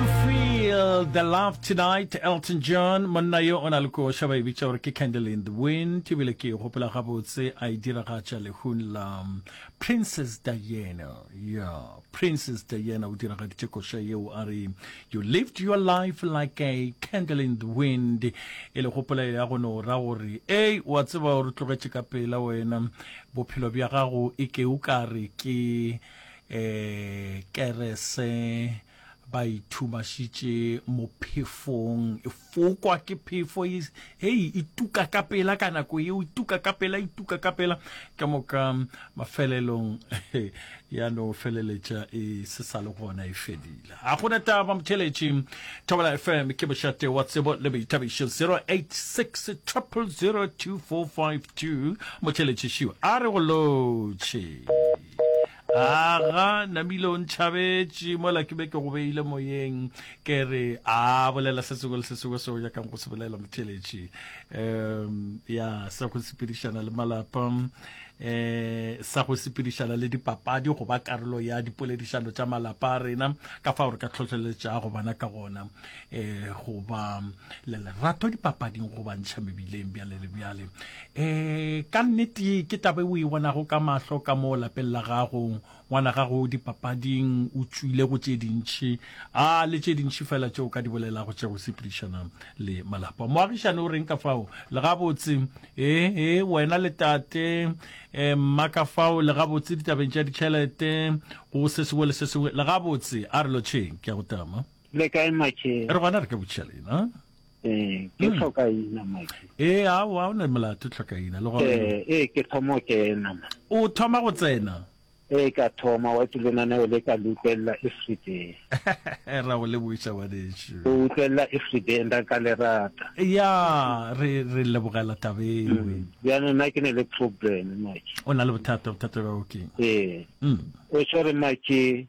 Feel the love tonight Elton John monna yo o na le koša ba e bitša gore ke Candle in the Wind ebile ke e gopola gabotse a e diragatša lehung la Princess Diana ya Princess Diana o diragaditše koša yeo a re you lived your life like a candle in the wind e le gopola ya go no ra gore ei wa tseba o re tlogetše ka pela wena bophelo bja gago e ke o ka re ke um kerese ba ithumašitše mo phefong e fokwa ke phefo e, hei e tuka ka pela ka nako yeo e tuka ka pela e tuka ka pela ka moka mafelelong ya no feleletša e se sa le gona e fedile a gona taba motheletši thobela fm ke bošate wa tsebo le boithabišo 086 002452 motheletši šiwa a re go lotšhe Aga namile o ntšhabetše mola ke be ke go beile moyeng ke re a bolela se sengwe le se sengwe se o nyakang go se bolela motheletši um ya sa go sepedišana le malapa um sa go sepedišana le dipapadi go ba karolo ya dipoledišano tša malapa a rena ka fao re ka tlhotlheletšago bana ka gona um go ba le lerato dipapading go bantšha mebileng bjale le bjale E, ka nnete ke taba e o e bonago ka mahlo ka mo lapeng la gago. Ngwana gago dipapading o tšwile go tše dintši, a le tše dintši fela tšeo ka di bolelago tša go sepedišana le malapa. Moagišane o reng ka fao? Le gabotse, ee, ee, wena le tate, e, mma ka fao, le gabotse ditabeng tša ditšhelete, go se sengwe le se sengwe, le gabotse. A re lotšheng, ke a go tama. Le kae, Makhe? Re gona re ka botšiša lena. Eh, ke mm. tlhoka ina maki. Eh, a wa o ne molato tlhoka ina le gore. Eh, eh ke thomo ke ena ma. O thoma go tsena. Eh ka thoma wa tlo na ne o le ka lutlella every day. Ra o le buisa wa desho. O utlella every day nda ka le rata. Ya, re re le bogela tabeng. Mm. Ya no na ke ne le problem maki. O na le bothata bothata ba okay. Eh. Mm. O tshwere maki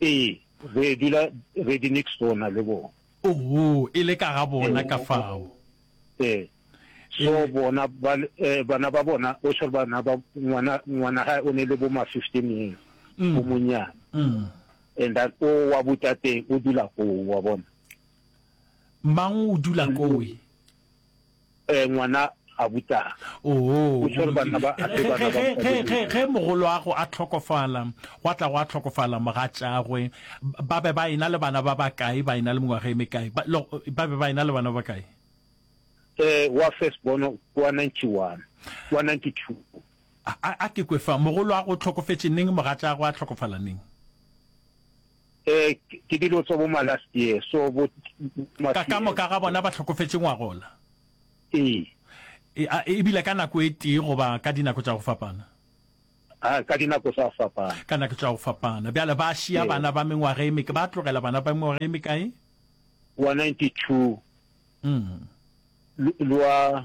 Ee, re dula re di next door na le bona. Oho, e le ka ga bona ka fao. Ee, so bona ba, eh, bana ba bona, o sure bana ba, ngwana, ngwana gae o ne le bo ma fifteen years, o monyana. And then o wa botateng o dula koo, wa bona. Mang o dula koo? eh, ngwana gabutana. Oho, O swere banna ba ge, ape ge, bana ba ge, ge, ge, mosadi. ge mogoloago a hlokofala, gwa tla gwa hlokofala mogatšagwe, ba- ba be ba ena le bana ba bakae, ba ena le mengwaga e mekae, ba, lo, ba be ba ena le bana ba bakae? Eh, wa first born wa 91, wa 92. A, a, a ke kwe fa, mogoloago o hlokofetše neng, mogatšagwe a hlokofala neng? Ee, ke dilo tso bo ma last year, so bo ma Ka, ka moka ga bona ba hlokofetše ngwagola. Ee. E, a, e bile ka nako e tee goba ka dinako tša go fapana? A, ka dinako tsa fapana. Ka nako tša go fapana. Bjale ba šia Ee. bana ba mengwaga e meka, ba tlogela bana ba mengwaga e mekae? Wa ninety-two, Mm. l, lwa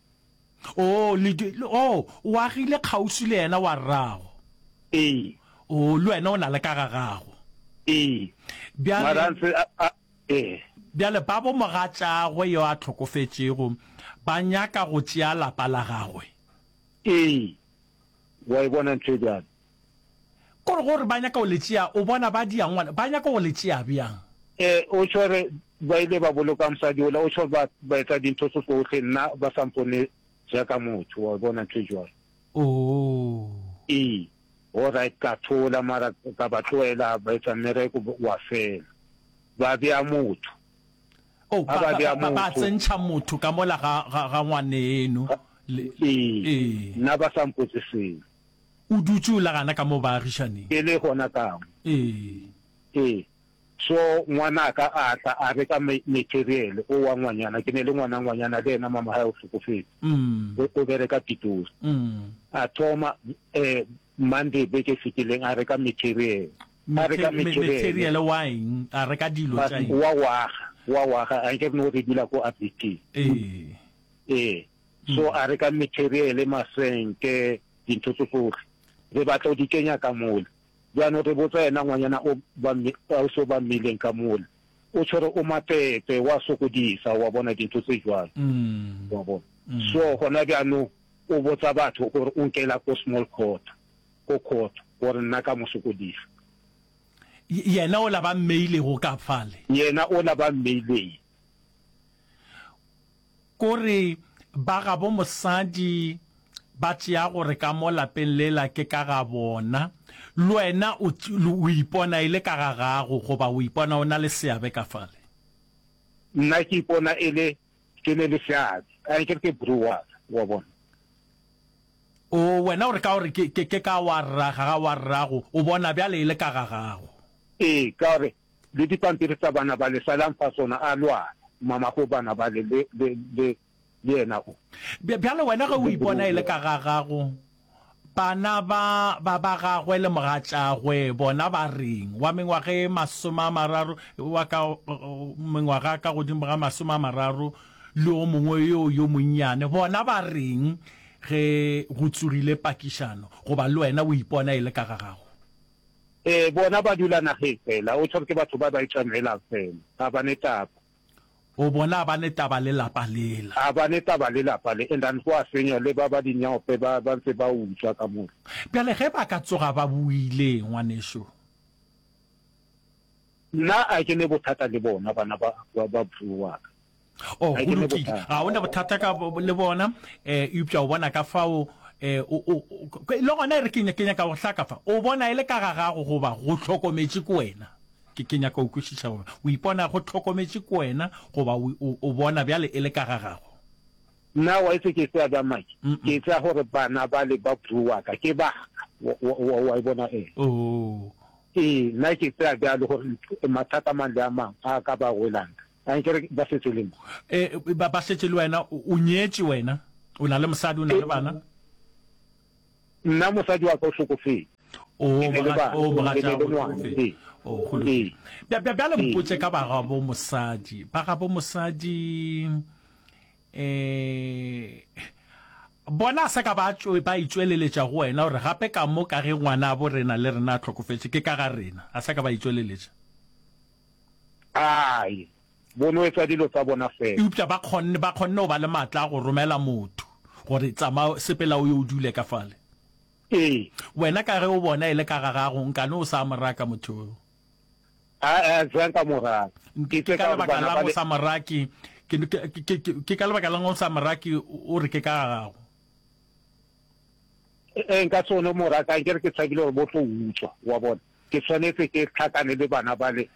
Oo, le, le, oo, o agile kgauswi le yena wa rrago. Ee. Oo, le wena o na le ka ga gago. Ee. Bjale, Mara a ntse a, a, ee. bjale babo mogatšagwe yo a hlokofetšego ba nyaka go tšea lapa la gagwe. Ee. Wa e bona ntho e bjalo? Ko re gore ba nyaka go le tšea, o bona ba dia ngwana, ba nyaka go le tšea bjang? Ee, o tšho gore ba ile ba boloka mosadi ola, o tšho ba, ba etsa dintho tso tsohle, nna ba sa mpone jaaka motho, wa bona, ntho e jwalo. Oo. Ee, alright, ka thola, mara ka ba tlohela ba etsa mmereko wa fela. Ba bea motho. Oh, Ha ba, ba ba, bea ba, ba motho. tsentšha motho ka mola ga, ga, ga ngwaneeno. Le, Ee, ee. nna ba sa mpotse selo. O dutše o la gana ka mo baagišaneng. E le gona ka mo. Ee. Ee. So ngwanaka a tla a reka material o wa ngwanyana. Ke ne le ngwana ngwanyana le yena mama hae o hlokofetse. Mm. O bereka Pitori. Mm. A thoma eh Monday beke e fetileng a reka material. A reka material. Material wa eng? A reka dilo tša eng? Wa waga. Wa waga. A nke re no re dula ko Abiti. Ee. Ee. so a re ka materiele masenke dintho tso tsohle re batla o di kenya ka mole jaanong re botsa yena ngwanyana o o se o ba mmeileng ka mole o tshwere o mapepe wa sokodisa wa bona dintho tse jwalo mm. wa bona mm. so gona jaanong o botsa batho gore o nkela ko small court ko court gore nna ka mo sokodisa yena o la ba mmeilego ka fale yena o la ba mmeileng Ko re ba gabo mosadi ba tšea gore ka mo lapeng lela ke ka ga bona, le wena o, o ipona e le ka ga gago goba o ipona o na le seabe ka fale? Nna ke ipona e le ke ne le seabe, a nke re ke bro wa ka, wa bona. Oo, wena o re ka gore ke, ke, ke ka wa rraga, ga wa rrago, o bona bjale e le ka ga gago. Ee, ka gore Le dipampiri tsa bana bale, salang fa sona, a lwana, mamako bana bale, le, le, le, le yena o. Bj, bjale wena ge o ipona e le ka ga gago, bana ba, ba, ba gagwe le mogatšagwe, bona ba reng? Wa mengwaga e masome a mararo, wa ka, mengwaga ka godimo ga masome a mararo, le o mongwe yoo yo monnyane, bona ba reng ge go tsogile pakišano, goba le wena o ipona e le ka ga gago? Ee, bona ba dula nageng fela. O tshwarwe ke batho ba ba e tšamelang fela. Ga ba ne taba. O bona, a ba ne taba le lapa lela. A ba ne taba le lapa le. And then gwa fenywa le ba ba dinyope ba ba ntse ba utswa ka mola. Bjale ge ba ka tsoga ba buile, ngwanešu. Nna a ke ne bothata le bona bana ba, ba, ba bro wa ka? Oh, go lokile. Ga o ne bothata ka le bona, eh, eupša o bona ka fao, eh, o, o, le gona e re ke, ke nyaka go hlaka fa. O bona e le ka ga gago goba go hlokometše ke wena. Ke, ke nyaka go kwešiša gore o ipona go hlokometše ke wena goba o, o, o bona bjale e le ka ga gago. Nna wa itse ke tsaya bjang madi? Ke tsaya gore bana bale ba bro wa ka, ke ba ka. Wa e bona? Ee. Oh. Ee, nna ke tsaya bjalo gore mathata a mang le a mang a ka ba welang. Ankere ba setse le mo? Ee, ba setse le wena. O nyetše wena? O na le mosadi? O na le bana? Nna mosadi wa ka o hlokofetše. Oo, bagatšabo hlokofetše. Ee. Oo, go lokile. Ee. Bjale mpotše ka bagabo mosadi. Bagabo mosadi, eh, bona a sa ka ba ba itšweleletša go wena gore gape ka mo ka ge ngwana a bo rena le rena a hlokofetše, ke ka ga rena. A sa ka ba itšweleletša. Ai, Bo no etsa dilo tsa bona fela. Eupša ba kgonne, ba kgonne go ba le matla a go romela motho, gore, Tsamaya, sepela o ye o dule ka fale. Ee. Wena ka ge o bona e le ka ga gago, nka no o sa mo raka motho yoo. A, a, ga nka mo raka. Ke, ke ka lebaka la'ng o sa mo rake? Ke, ke, ke, ke, ke ka lebaka la'ng o sa mo rake, o re ke ka ga gago? Ee, nka se kgone go mo raka, anke re ke tshabile gore bo tlo utswa, wa bona. Ke swanetše ke hlakane le bana bale,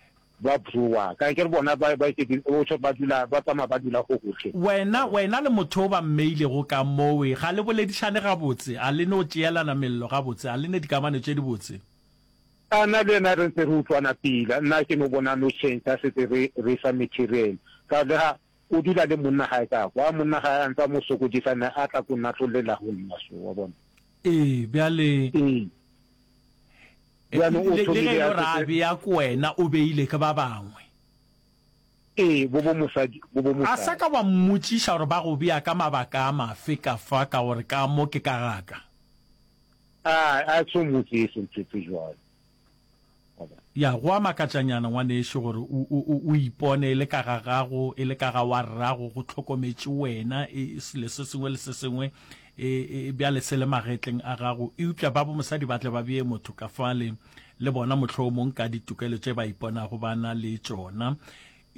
Ba broa ka akere bona ba ba iketše o tšho ba dula ba tsamaya ba dula go gohle. Wena wena le motho o ba mmeilego ka mowe ga le boledišane gabotse a le no tšeelana mello gabotse a le ne dikamano tše di botse. A na le yena re ntse re utlwana pila nna ke no bona no change a setse re re fa material ka le ga O dula le monna gae ka kwa monna gae a ntse a mo sokodisa ne a tla ko nna tlo lela go nna so wa bona. Ee, bjale. Ee. Bjale o thomile a. Le ge e lo ra bea ko wena o beile ke ba bangwe. Ee, bo bo mosadi, bo bo mosadi. A sa ka wa mmotšiša gore ba go bea ka mabaka a mafe ka fa ka gore ka mo ke ka ga ka. A, a so mmotšiše ntho tse jwalo. Ya, go a makatšanyana, ngwanešu, gore o, o, o, o ipone e le ka ga gago, e le ka ga wa rrago, go hlokometše wena, e, selo se sengwe le se sengwe, e, e, bjale se le magetleng a gago. Eupša babo mosadi ba tle ba bee motho ka fale, le bona mohlomong ka ditokelo tše ba iponago ba na le tšona.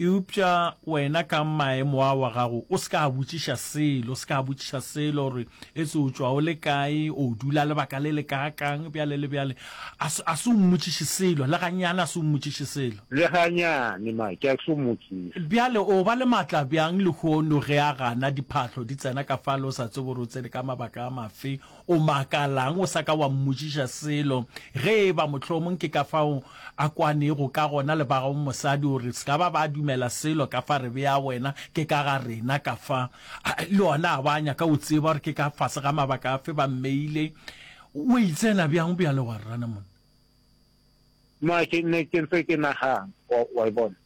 Eupša wena ka maemo a wa gago o se ka a botšiša selo, o se ka a botšiša selo gore etse o tšwa o le kae, o dula lebaka le le kaakang, bjale le bjale. A se, a se o mmotšiše selo, le ganyane a se o mmotšiše selo. Le ganyane, Mike, a se o mmotšiše. Bjale o ba le matla bjang lehono ge a gana, diphahlo di tsena ka fale, o sa tsebe gore o tsene ka mabaka a mafe, O makalang o sa ka wa mmotšiša selo? Ge e ba mohlomong ke ka fao a kwanego ka gona le ba gago mosadi, o re, Se ka ba ba dumela selo ka fa re bea wena, ke ka ga rena ka fa. A, le ona a ba nyaka go tseba gore ke ka fase ga mabaka afe ba mmeile. O e tsena bjang bjale wa rrana monna? Nna ke ne ke ntse ke nagana, wa, wa e bona.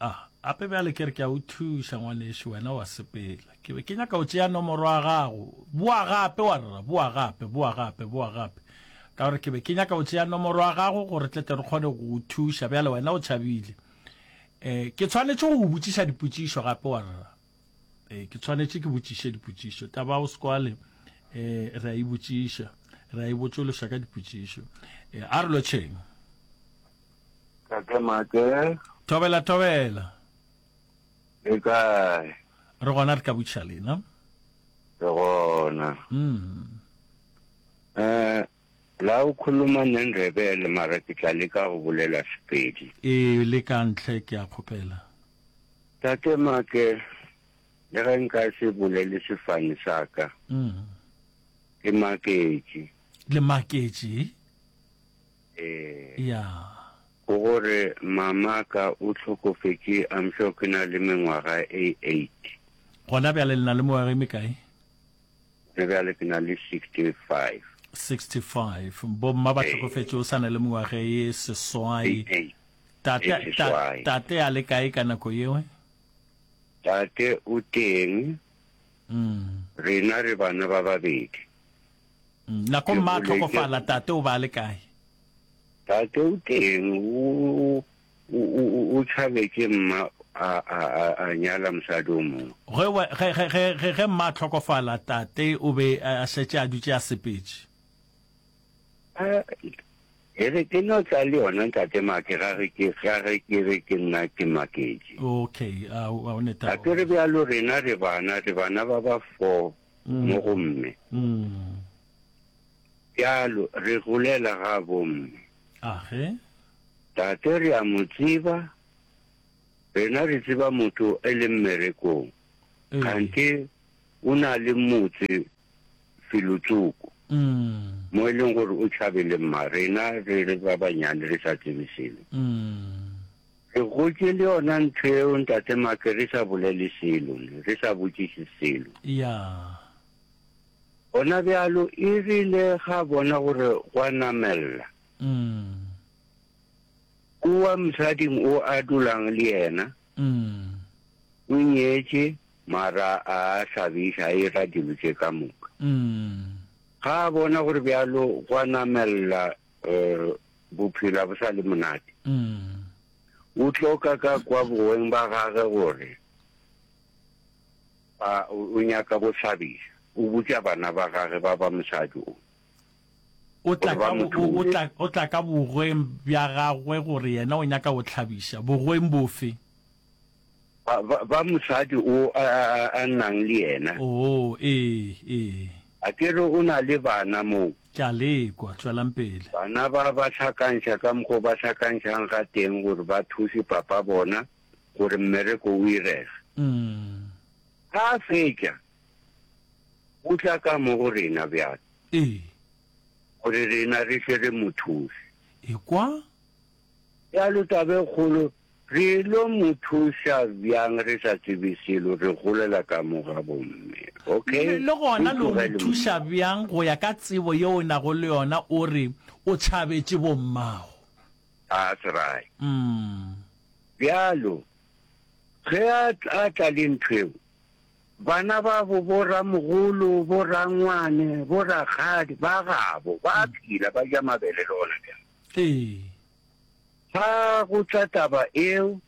Ah, ape bjale ke re ke a o thuša ngwanešu, wena wa sepela. Ke be ke nyaka o tšea nomoro ya gago. Boa gape, warra, boa gape, boa gape, boa gape. Ka gore ke be ke nyaka o tšea nomoro ya gago gore tle tle re kgone go o thuša. Bjale wena o tšhabile. Eh, ke tshwanetše go o botšiša dipotšišo gape, warra. Eh, ke tshwanetše ke botšiše dipotšišo. Taba o sekwale, eh, re a e botšiša. Re a e botšološa ka dipotšišo. Eh, a re lo tšheng. Kake make. Thobela thobela. Le kae? Re gona re tla botšiša lena. Re gona. Mm. Eh la o khuluma ne Ndebele mara ke tla leka go bolela Sepedi. E le ka ntle ke a kgopela. Tate make le ge nka se bolele sefane sa ka. Mm. Ke maketše. Le maketše? Ee. Ya. Go gore mama ka o hlokofetše I'm sure ke na le mengwaga e eight. Gona bjale le na le mengwaga e mekae? Gona bjale ke na le sixty five. 65 bo mma ba hlokofetše o sa na le mengwaga e seswai. Tate tate a le kae ka nako yewe? Tate o teng. Mm. Rena re bana ba babedi. Nako mma a tlhokofala, tate o ba a le kae? Tate o teng, o tšhabetše mma a nyala mosadi o mongwe. Ge mma a tlhokofala, tate o be a šetše a dutše a sepetše. E re ke no tla le yona ntate Make, ga re ke re ke nna ke maketše. Okay, a o neta. Ga ke re bjalo rena re bana, re bana ba ba four. mo go mme. Bjalo re golela ga bomme. Age. Tate re a mo tseba, rena re tseba motho e le mmerekong, kgante o na le motse Filotsoko, mo e leng gore o tšhabele mma, rena re le ba banyane re sa tsebe selo. Re gotše le yona ntho yeo Ntate Mark re sa bolele selo, re sa botšiše selo. Yeah. Gona bjalo e rile ga bona gore go a namelela, Mm. kua mosading o a dulang le yena, Mm. o nyetše, mara a hlabiša, a ira dilo tše ka moka. Mm. Ga a bona gore bjalo go a namelela, eh, bophelo ga bo sa le monate o tloka ka kwa boweng ba gage gore a o nyaka go thabisa o botša bana ba gage ba ba mosadi o o tla ka o tla ka bogweng bja gagwe gore yena o nyaka go tlhabisa bogweng bofe Ba, ba, ba mosadi o a, a, a, a nnang le yena. Oo, ee, ee. A ke re o na le bana moo? Ke a lekwa. Tšwelang pele. Bana ba ba hlakantšha ka mokgwa o ba hlakantšhang ga teng gore ba thuse papa bona gore mmereko o irege. Mm. Ga a fetša, o tla ka mo go rena bjale, Ee. gore rena re tle re mo thuse. Ekwa, Bjalo taba e kgolo, re lo mo thuša bjang re sa tsebe selo, re golela ka mo ga bomme, okay? Le gona lo mo thuša bjang go ya ka tsebo yeo o nago le yona, o re o tšhabetše bommago. That's right. Umm. Bjalo, ge a a tla le ntho yeo, bana babo, bo-ramogolo, bo-rangwane, bo-rakgadi ba gabo, ba a phela, ba ja mabele le gona bjale. Ee. Fa go tla taba eo,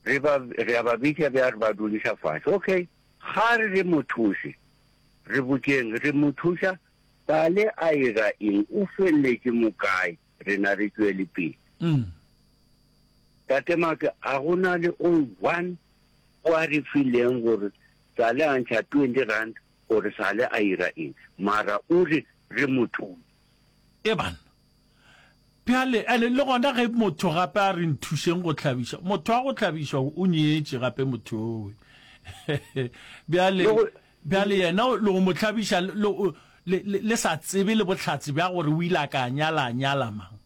re ba, re a ba bitša bjang, re ba duliša fase. Okay. Ga re re mo thuše, re botšeng, re mo thuša bale a ira eng, o feleletše mo kae, rena re tšwele pele. Mm. Tate Maka, a go na le o one o a re fileng gore sale a ntšha twenty rand gore sale a ira eng, mara o re re mo thuse. Eban. Bjale, and le gona ge motho gape a re nthušeng go hlabiša, motho wa go hlabišwa o nyetše gape motho owe. Bjale, bjale yena le go mo hlabiša le, le, le sa tsebe le bohlatse bja gore o ile a ka nyala, a nyala mang.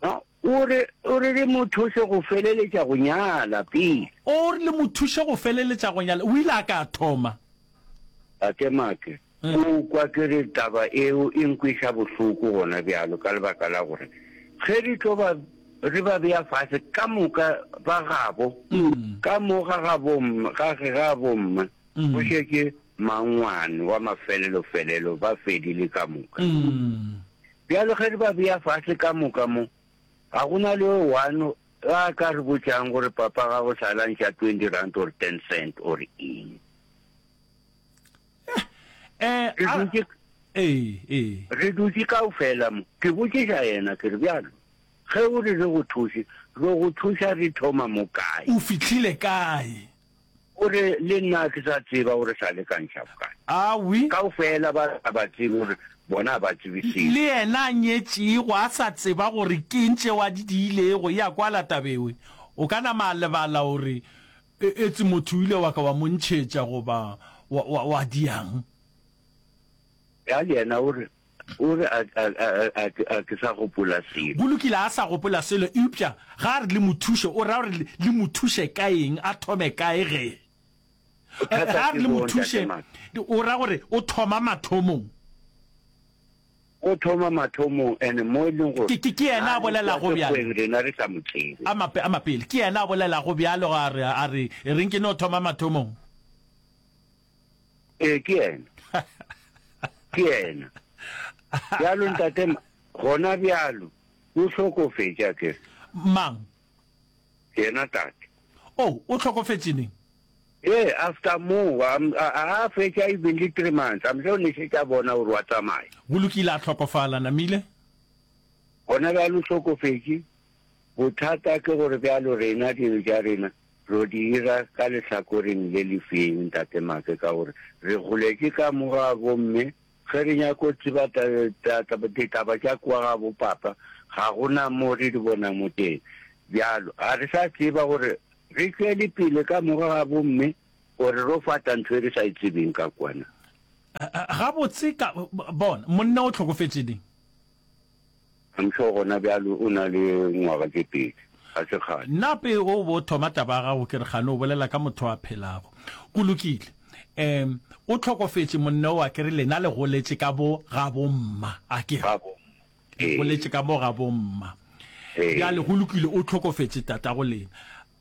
A O re, o re le mo thuše go feleletša go nyala pele. O re le mo thuše go feleletša go nyala. O ile a ka thoma. Tate Mark, o kwa ke re taba eo e nkweša bohloko gona bjalo ka lebaka la gore ge re tlo ba, re ba bea fase ka moka ba gabo, ka mo ga gabo, ga, ga bomma, go šetše mangwane wa mafelelo-felelo, ba fedile ka moka. Bjalo ge re ba bea fase ka moka mo, ga go na le o one a ka re botšang gore, Papa, ga go sa lantšha twenty rand or ten cent or eng. Re dutše, re dutše kaofela mo, ke botšiša yena, ke re, Bjalo ge o re re go thuse, re go thuša re thoma mo kae? O fihlile kae? O re, Le nna a ke sa tseba gore sa le ka ntlha bokae. Awi. Kaufela ba sa ba tsebe gore bona a ba tsebe selo. Le yena a nyetšego a sa tseba gore ke eng tšeo a di diilego. E a kwala taba ewe. O ka nama a lebala gore e, etse motho o ile wa ka wa mo ntšhetša goba wa, wa, wa di yang. Bjale yena o re, O re, A, a, a, a, a, ke, a ke sa gopola selo. Go lokile, a sa gopola selo. Eupša ge a re le mo thuše, o ra gore le, le mo thuše ka eng, a thome kae ge? Bothata Ge a re ke le mo boo, thuše, Ntate Max. o ra gore o thoma mathomong. O thoma mathomong, and mo e leng gore Ke, ke, ke yena a a re bolelago kwa bjalo. sekgweng rena re sa mo tsebe. A mape, a mapele. Ke yena a bolelago bjalo, a re, a re, reng ke no thoma mathomong? ee ke yena ke yena bjalo ntate gona bjalo o hlokofetša ke mang yena tate o oh, o hlokofetšeneng ee after moo a fetša even le three months amhle o nešetša bona gore wa tsamaya go lokile a tlhokofala namile gona bjalo hlokofetše bothata ke gore bjalo rena dilo ja rena Tlo dira ka lehlakoreng le lefeng, Ntate Make, ka gore re goletše ka mo ga bomme. Ge re nyaka go tseba ditaba tša kwa ga bopapa, ga go na mo re di bonago teng. Bjalo ga re sa tseba gore re tšwele pele ka mo ga bomme gore ro fata ntho e re sa e tsebeng ka kwa na. Gabotse ka, bona, monna o hlokofetše di. I'm sure gona bjalo o na le ngwaga tše pedi, ga se kgale. Na pee o bo thoma taba ya gago ke re kgane o bolela ka motho a phelago. Go lokile. Em, o tlhokofetše monneo a ke re lena le goletše ka bo gabomma, a ke re? Gabomma. Le Ee. goletše ka bo gabomma. Ee. Bjale go lokile, o tlhokofetše tatago lena.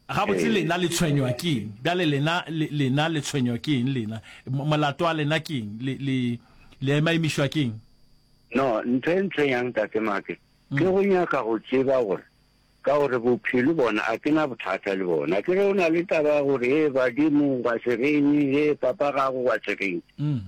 Gabotse lena le tshwenywa ke eng? Bjale lena, le, lena le tshwenywa ke eng lena? M, molato wa lena ke eng? Le, le, le emaimišwa ke eng? No, ntho e ntle yang, Tate Make? Mm. Ke go nyaka go tseba gore, ka gore bophelo bona, a ke na bothata le bona. Ke re o na le taba ya gore, Hee, badimo, wa se reng, hee, papa gago, wa se reng. Mm.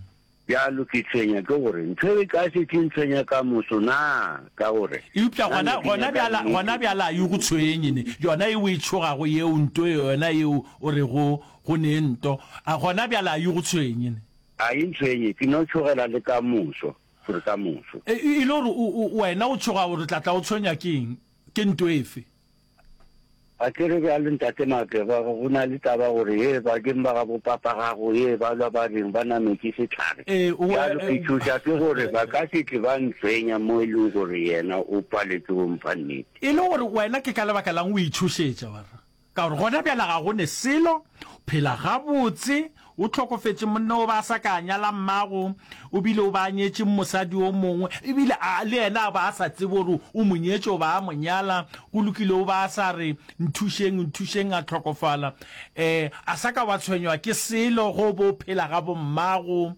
Bjalo ke tshwenya ke gore ntho e ka se tli ntshwenya ka moso na? Ka gore. Eupša gona, gona bjala, gona bjala a e go tshwenye, ne, yona e o e tšhogago yeo, nto yona yeo o rego go ne nto, a gona bjala a e go tshwenye, ne? A e ntshwenye, ke no tšhogela le ka moso, gore ka moso. E, e le gore o, o, wena o tšhoga gore o tla tla o tshwenywa ke eng, ke nto efe? A ke re bjale Ntate Mageba, go na le taba gore hee bakeng ba gabo papa gago hee ba lwa ba reng ba nametše sehlare. Bjalo ke tšhoša ke gore ba ka se tle ba ntshwenya mo e lego gore yena o paletše go mpha nnete. E le gore wena ke ka lebaka la'ng o itšhošetša? Ba re, Ka gore gona bjale ga go ne selo, phela gabotse, O hlokofetše monna o ba a sa ka a nyala mmago, o bile o ba a nyetše mosadi o mongwe, e bile a le yena a ba a sa tsebe gore o mo nyetše goba a mo nyala. Go lokile o ba a sa re, Nthušeng, nthušeng, a hlokofala. Um, a sa ka wa tshwenywa ke selo go bo phela ga bommago.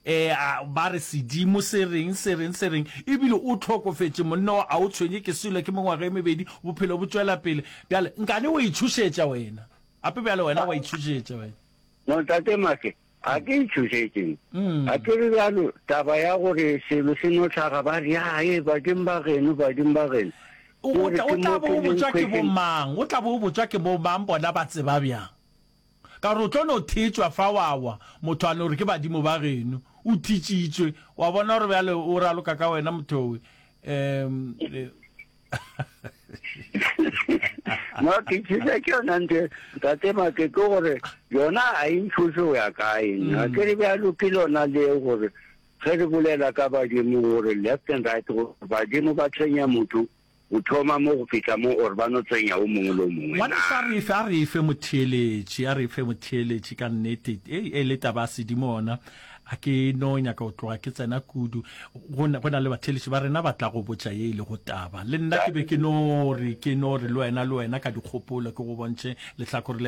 Um, ba re sedimo se reng, se reng, se reng. E bile o hlokofetše monna o, a o tshwenye ke selo, ke mengwaga e mebedi, bophelo bo tšwela pele. Bjale, nkane wa itšhošetša wena. Gape bjale wena wa itšhošetša wena. Motate Maake, ga ke e tšhošetše. Ga ke re bjalo, taba ya gore selo se no hlaga ba re, Ya, ee, badimo ba geno, badimo ba geno. O Ke o gore tla, o ke tla mo bo o ke leng botšwa ke khwetšing. bomang? O tla bo o botšwa ke bomang? Bona ba tseba bjang? Ka gore o tlo no thetšwa fa wa wa, motho a no re ke badimo ba geno. O thitšitšwe. Wa bona gore bjale o raloka ka wena, mothowe. Um, eh. no ke tshisa ke yona nte tate make ke gore yona a e nthuse go ya kae nna mm. ke re bjalo ke lona le gore ge re bolela ka badimo gore left and right gore badimo ba tsenya motho o thoma mo go fitlha mo or ba no tsenya o mongwe le o mongwe wa sa re fa re fa motheeletsi a re fa motheeletsi ka nnete e e le taba sedimo ona A ke no nyaka go tloga ke tsena kudu, go na, go na le batheeletši ba rena ba tla go botša ye e lego taba. Le nna ke be ke no re, ke no re le wena, le wena ka dikgopolo, ke go bontšhe lehlakore le.